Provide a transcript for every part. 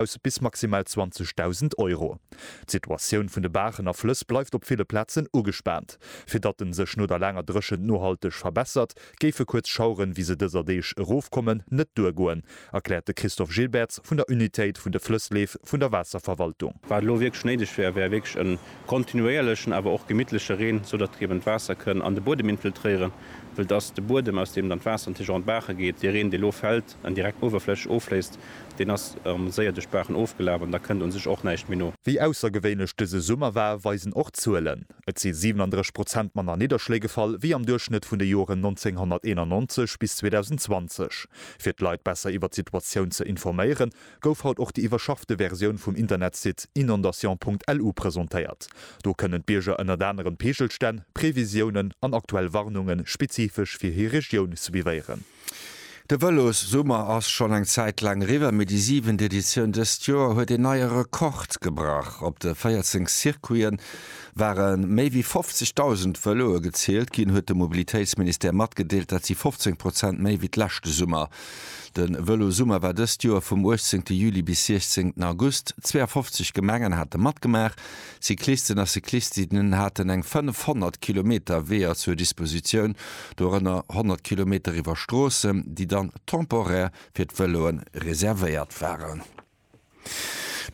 aus bis maximal 20.000 Euro. D'Situatioun vun de Baachen a Flëss bleift op ville Plazen ugespaant. Fir datt en sech no der laanger Dréchent nohalteg verbessert, géife kuerz Schaueren, wéi se dëser Deeg erofkommen, net duergoen, erkläert de Christophe Gilbertz vun der Unitéit vun de Flëssleef vun der Waasserverwaltung. Wat elo wierklech néideg wär, wär wierklech e kontinuéierlechen, awer och gemittleche Reen, sou datt eben d'Waasser kënn an de Buedem infiltréieren, wëll et ass de Buedem, aus deem dann d'Waasser natierlech och an d'Baache geet. Dee Reen, dee elo fält, en direkt d'Uewerfläch offléisst, deen ass erm séier duerch d'Baachen ofgelaf an da kënnt un sech och näischt méi no. Wéi aussergewéinlech dëse Summer war, weisen och d'Zuelen. Et si 37 Prozent manner Nidderschléi gefall wéi am Duerchschnëtt vun de Joren 1991 bis 2020. Fir d'Leit besser iwwer d'Situatioun ze informéieren, gouf haut och déi iwwerschaffte Versioun vum Internetsite inondation.lu presentéiert. Do kënnen d'Bierger ënnert anerem Peegelstänn, Previsiounen an aktuell Warnunge spezifesch fir hir Regioun suivéieren. De Vëlossummer ass schonn eng Zäit laang eriwwer, mee déi siwent Editioun dëst Joer huet een neie Rekord gebrach. Op de 14 Circuite ware méi wéi 50.000 Vëloe gezielt ginn, huet de Mobilitéitsministère matgedeelt. Dat si 15 Prozent méi wéi d'leschte Summer. De Vëlossummer war dëst Joer vum 18 Juli bis 16 August. 52 Gemengen hate matgemaach, Cyclisten a Cyclistinnen haten eng 500 Kilometer Weeër zur Dispositioun, dorënner 100 Kilometer iwwer Stroossen, déi dann temporaire fir d'Vëloe reservéiert waren.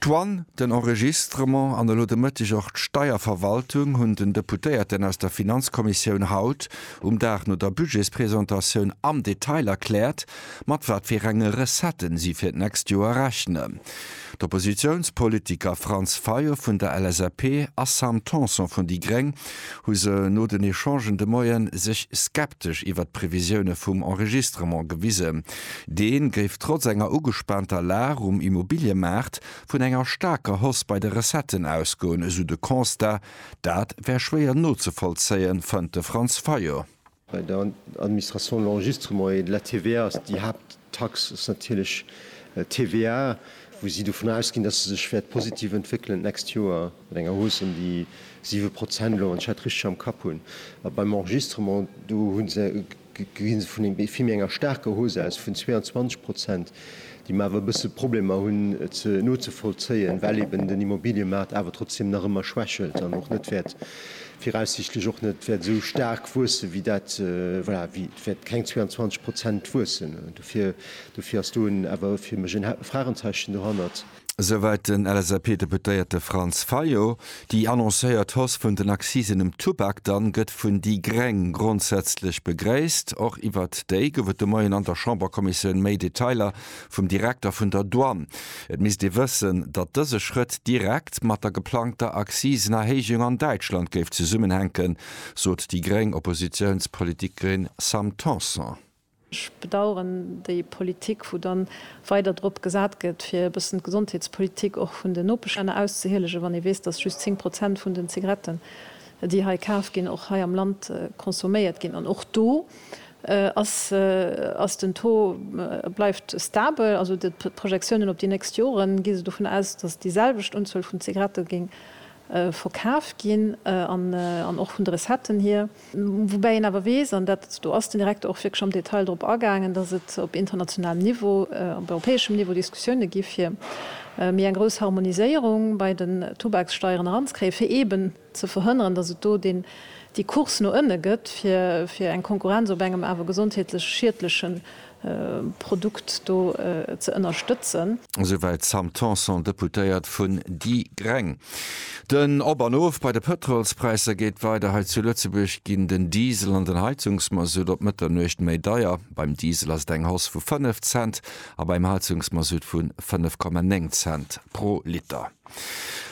D'Douane, den Enregistrement an elo de Mëtteg och d'Steierverwaltung hunn den Deputéierten aus der Finanzkommissioun haut um Dag no der Budgetspresentatioun am Detail erkläert, mat wat fir enge Recetten si fir d'nächst Joer rechnen. D'Oppositiounspolitiker Franz Fayot vun der LSAP a Sam Tanson vun déi gréng hu se no den Echangen de Moie sech skeptesch iwwert d'Previsioune vum Enregistrement gewisen. Dee géif trotz enger ugespaanter Lag um Immobiliëmaart vun enger staarker Hausse bei de Recetten ausgoen, esou de Constat. Dat wär schwéier nozevollzéien, fënnt de Franz Fayot. Bei der Administration l'enregistre moyen de la TVA ass déi Haapttax ass natierlech d'TVA, wou si dovun ausginn, dass se sech wäert positiv entwéckelen d'nächst Joer mat enger Hausse ëm déi siwe Prozent elo, wann ech dat richteg am Kapp hunn. A beim Enregistrement, do hu se, gi se vun vill méi enger staarker Hausse aus, vun 22 Prozent déi mer awer e bësse Problemer hunn ze nozevollzéien, well eben den Immobiliëmaart awer trotzdem nach ëmmer schwächelt an och net wäert, viraussichtlech och net wäert esou staark wuessen, wéi dat, voilà, wéi, et wäert keng 22 Prozent wuessen. Dofir, dofir ass do en, awer fir mech en Fragenzeechen dohannert. Esouwäit den LSAP-Deputéierte Franz Fayot. Déi annoncéiert Hausse vun den Accisen um Tubak dann gëtt vun déi gréng grondsätzlech begréisst. Och iwwert déi gouf et de Moien an der Chamberkommissioun méi Detailer vum Direkter vun der Douane. Et misst ee wëssen, datt dëse Schrëtt direkt mat der geplangter Accisenerhéijung an Däitschland géif zesummenhänken, sot déi gréng Oppositiounspolitikerin Sam Tanson. Ech bedauern déi Politik, wou dann weider drop gesat gëtt, fir e bëssen d'Gesondheetspolitik och vun den Nopeschlänner auszehielegen, wann ee weess, dass just 10 Prozent vun den Zigaretten, déi hei kaf ginn, och hei am Land consomméiert ginn. An och do ass den Taux, bleift stabel. Also d'Projektiounen op déi nächst Joren, gi se dovun aus, dass déi selwecht Unzuel vun Zigarette géing verkaf ginn an och vun de Recetten hier. Woubäi een awer weess, an dat, do ass den Direkter och wierklech am Detail drop agaangen, datt et op internationalem Niveau, op europäeschem Niveau Diskussioune gi fir méi eng grouss Harmoniséierung bei den Tubakssteieren eranzekréien, fir eeben ze verhënneren, datt et do déi Course no ënne gëtt, fir eng Konkurrenz op engem awer gesondheetlech schiedleche Produkt do ze ënnerstëtzen. Esouwäit d'Sam Tanson, Deputéiert vun déi Gréng. Den Op an Of bei de Pëtrolspräisser geet weider. Hei zu Lëtzebuerg ginn den Diesel an den Heizungsmasutt op Mëtternuecht méi deier. Beim Diesel ass et eng Hausse vu 5 Cent a beim Heizungsmasutt vu 5,9 Cent pro Liter.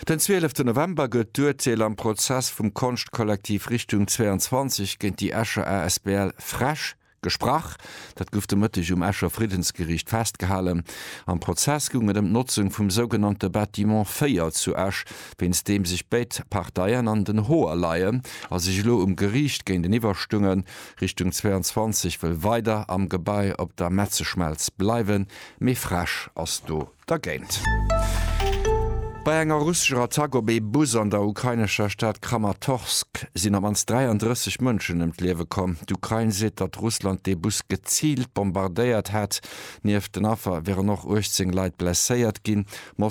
Den 12 November gëtt d'Urteel am Prozess vum Konschtkollektiv Richtung 22 géint déi Escher asbl Fresch. Gesprach. Dat gouf de Mëtteg um Escher Friddensgeriicht festgehalen. Am Prozess goung et ëm d'Notzung vum sougenannte Bâtiment 4 zu Esch, wéinst deem sech béid Parteien an den Hoer leien a sech elo um Geriicht géinteniwwer stungen. Richtung 22 wëll weider am Gebai op der Metzeschmelz bleiwen, mee frEsch ass do Da géint. Bei enger russescher Attack op ee Bus an der ukrainescher Stad Kramatorsk sinn op d'mannst 33 Mënschen ëm d'Liewe komm. D'Ukrain seet, datt Russland dee Bus geziilt bombardéiert hätt. Nieft den Affer wieren och 18 Leit blesséiert ginn.